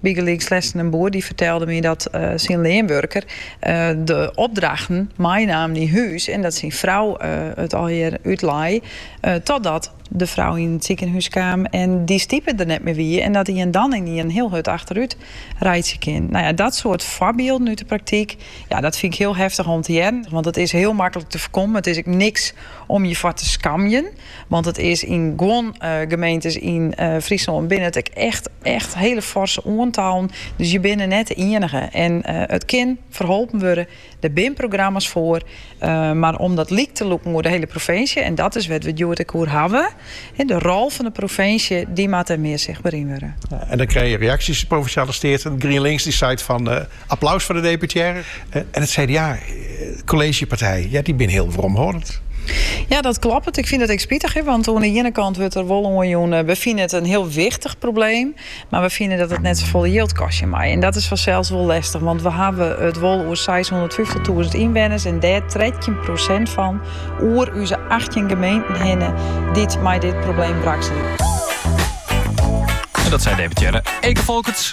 Bygelyks lesten in boer dy fertelde my dat syn leanwurker de opdrachten meinaam nei hûs en dat syn frou it allegear útlei totdat de frou yn it sikehûs kaam en dy stipe der net mear wie en dat ien dan ynienen hiel hurd achterút reitsje kin. Nou ja, dat soart foarbylden út de praktyk, ja, dat fyn ik hiel heftich om te hearren, want it is hiel maklik te foarkommen, it is ek niks om je foar te skamjen. Want it is yn guon gemeentes yn Fryslân binne it ek echt, echt hiele forse oantallen. Dus je binne net de ienige. En it kin ferholpen wurde. Der binne programma's foar. Mar om dat lyk te lûken oer de hiele provinsje, en dat is wêr't we it hjoed ek oer hawwe, de rol fan de provinsje, dy moat der mear sichtber yn wurde. En dan krije je reaksjes, de Provinsjale Steaten, GrienLinks, dy seit fan Applaus foar de deputearre en it CDA, kolleezjepartij, ja, dy binne hiel weromhâldend. Ja, dat kloppet. Ik fyn dat ek spitich, want oan 'e iene kant wurdt der wol oanjûn, we fine it in hiel wichtich probleem, mar we fine dat it net safolle jild kostje mei. En dat is fansels wol lestich, want we hawwe it wol oer seishûndertfyftich-tûzen ynwenners en dêr trettjin prosint fan oer ús achttjin gemeenten hinne dy't mei dit probleem wrakselje. Dat sei deputearre Eke Folkerts.